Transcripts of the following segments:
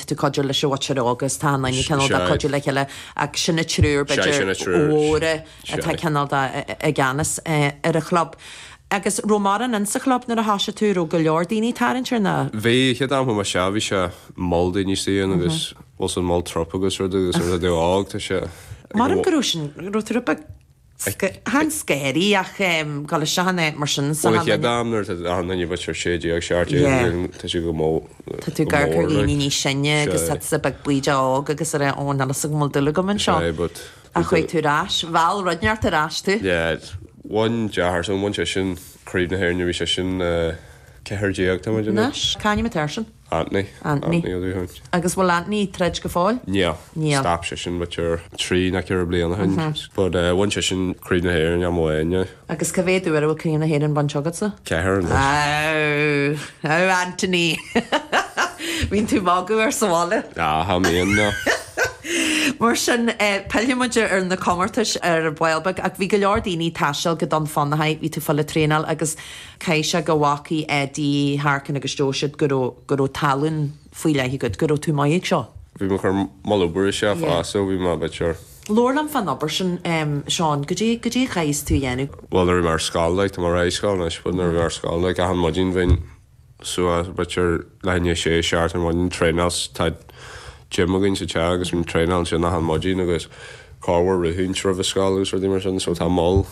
ag cuidiú leis an bhocsaire óg agus tá achan nduine cineál de cuidiú le chéile ach sin na triúr b'fhéidir mhóra atá cineál de i gceannas ar an chlub. Agus an raibh mórán ann sa chlub nuair a thosaigh tú, an raibh go leor daoine ag tarraingt ar. Ná, bhí, chéad am a chuaigh mise bhí sé moll daoine istigh ann agus bhfuil an moll trup agus rudaí agus rudaí óg tá sé. Maram go raibh sin, raibh tú a bit. Seans go éirí ach go le sean é mar sin sa chéad am nuair atá an duine bhfuil sé 16 17 bhliain tá sé go mór tá tú gar go líní ní sinne agus tá sa bag buí de óg agus ar an ón agus go mó dul go man seo but a chuid tú ráis bhil runeart a ráis tú yeah one jar so one session craobh na hair nu session uh, ceir déag tá Caiim a tesin Anthony. Anthony. Agus bhfuil Anthony ag troid go fóill? Níl. Níl. Stop seisean about b'fhéidir trí nó ceithre bliana ó shin. But eh bhain seisean Craobh na hÉireann uair amháin. Agus cá mhéad uair a bhfuil Craobh na hÉireann bainte agatsa? Ceathair anois. Aw. Aw Anthony. Bíonn tú ag magadh air sa bhaile. Aw cha mbíonn no. Mar sin eh pillfidh muid ar na comórtais ar ball beag ach bhí go leor daoine ag taisteal go Dún Fionnachaidh, bhí tú ag fáil traenáil agus Chaith sé go bhfacaidh Eddie Harkin agus dúirt siad go raibh go raibh tallann faoi leith agat, go raibh tú maith ag seo. Bhí mé cur moll obair isteach Yeah. fosta bhí mé b'fhéidir. Labhair liom fán obair sin, em, Seán, goidé, goidé a chaithfeas tú a dhéanamh. Bhuel nuair a bhí mé ar scoil like, tá mé réidh scoil anois but nuair a bhí mé ar scoil like achan maidin bhínn suas b'fhéidir leath i ndiaidh a sé a seacht ar maidin traenáil sa, tá gym againn sa teach agus bhínn traenáil ansin achan maidin agus corruair rith roimh an scoil agus rudaí mar sin so tá moll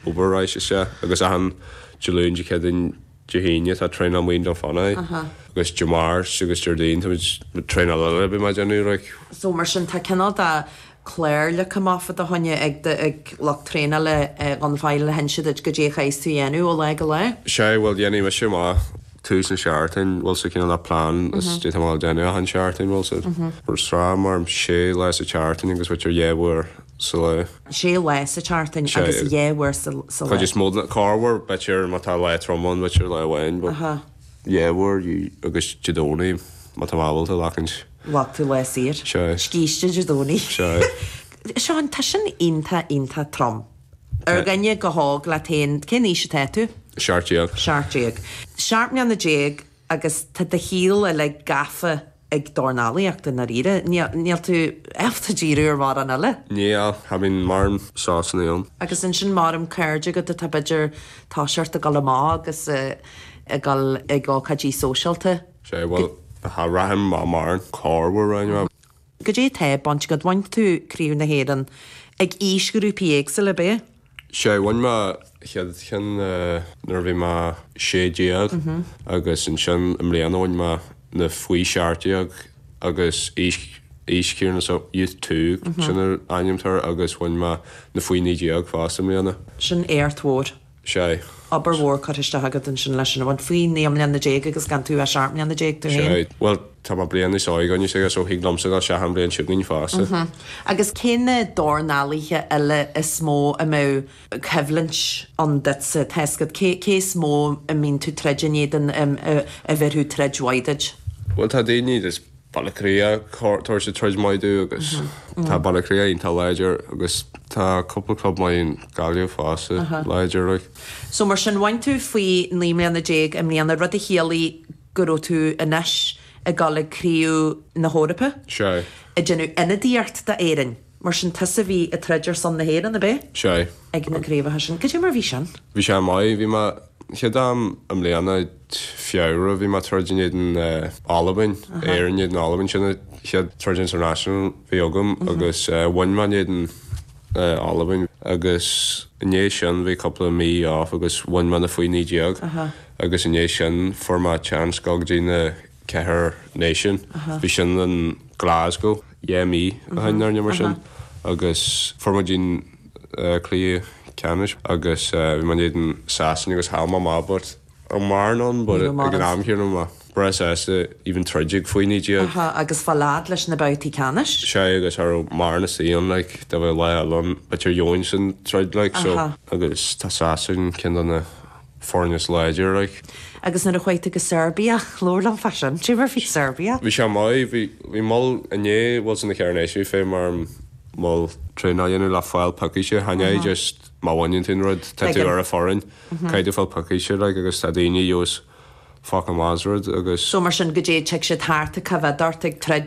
Obair leis isteach agus achan Dé Luain, Dé Céadaoin, Dé hAoine tá traenáil i nDún Fionnachaidh agus Dé Máirt agus Déardaoin tá mo thraenáil eile a bheidh mé déanamh like. So mar sin tá cineál de clár le chéile fá do choinne ag do lucht traenála go bhfuil ag inse duit go díreach a chaithfeas tú dhéanamh ó lá go lá? Sea, bhuel dhéanfaidh mise mo tús an seachtain bhuel so cineál de plean goidé tá mé déanamh achan seachtain bhuel so sraith mar sé lá sa tseachtain agus b'fhéidir dhá uair sa lá. sé lá sa tseachtain agus dhá uair sa lá. Corruair b'fhéidir má tá lá trom ann, b'fhéidir lá amháin, but dhá uair agus Dé Domhnaigh má tá mé ábalta glacaint. Glacfaidh tú lá saor. Scíste Dé Domhnaigh. Seán, tá sin iontach iontach trom. Ar dhuine chomh hóg leat féin, cén aois atá tú? Seacht déag. Seacht déag. Seacht mbliana déag agus tá do shaol uilig gafa ag dornálaíocht i ndáiríre, níl, níl tú ábalta díriú ar mórán eile. Níl, cha bhíonn mórán sosanna agam. Agus ansin mórán cairde agat atá b'fhéidir, ag iarraidh ort a dhul amach agus a dhul ag ócáidí sóisialta. Sea, bhuel, cha bhraithim mórán corruair ann. Cad é tá bainte agat bhain tú Craobh na hÉireann ag aois ghrúpaí éagsúla ar bith? Sea, bhain mé chéad cheann nuair a bhí mé sé déag agus ansin i mbliana bhain mé na faoi seacht déag agus aois aois Ciarán is é Youth Two sin an ainm atá air agus bhain mé na faoi naoi déag fosta i mbliana. Sin éacht mór. Sea. obair mhór curtha isteach agat ansin leis sin a bhaint, faoi naoi mbliana déag agus gan tú ach seacht mbliana déag tú Sea. féin. Bhuel, tá mé bliain níos óige anois like so thig liomsa gabháil isteach an bhliain seo chugainn fosta. Sea. Agus cé na dornálaithe eile is mó a mbeadh coimhlint ann duitse, tá a fhios agat? Cé is mó a mbíonn tú ag troid in éadan, a bheirfeadh troid mhaith duit? Bhuel, tá daoine, Baile-Átha-Cliath cor, tabhair siad troid maith domh agus tá Baile-Átha-Cliath iontach láidir agus tá cúpla club maith in Gaillimh fosta láidir like. So mar sin bhain tú faoi naoi mbliana déag i mbliana, rud a chiallaigh go raibh tú anois ag dul ag Craobh na hEorpa, ag déanamh ionadaíocht d'Éirinn. Mar sin tusa bhí ag troid ar son na hÉireann, ab é? Sea. Ag na craobhacha sin. Goidé mar bhí sin? Bhí sé maith. Bhí mé, chéad am i mbliana, Feabhra, bhí mé ag troid in éadan Albain, Éirinn in éadan Albain, sin an chéad troid international bhí agam agus bhain mé in éadan Albain agus i ndiaidh sin bhí cúpla mí off agus bhain mé na faoi naoi déag agus i ndiaidh sin fuair mé chance dul go dtí na ceithre Náisiúin. Bhí sin in Glasgow dhá mhí ó shin nó rud mar sin agus fuair mé go dtí an cluiche ceannais agus bhí mé in éadan Sasana agus chaill mé amach but cha raibh mórán ann but ag an am chéanna mé breá sásta even troid ag faoi naoi déag agus fáil a fhad leis na babhtaí ceannais. Sea agus cha raibh mórán istigh ann like dá mbeadh lá eile ann b'fhéidir bhainfinnse an troid like so agus tá Sasain ceann de na foirne is láidir like. Agus nuair a chuaigh tú go Serbia, labhair liom fá sin. Cé mar bhí Serbia? Bhí sé maith. Bhí, bhí moll i ndiaidh bhuel sin na Ceithre Náisiúin chaithfeadh mé moll traenáil a dhéanamh le fáil piocaíste. Chan é just má bhaineann tú an rud, tá tú ar an fhoireann. Caithfidh tú fáil piocaíste like agus tá daoine fhios focail maith as rud agus. So mar sin goidé, dtig siad thart ag coimhéad ort ag troid?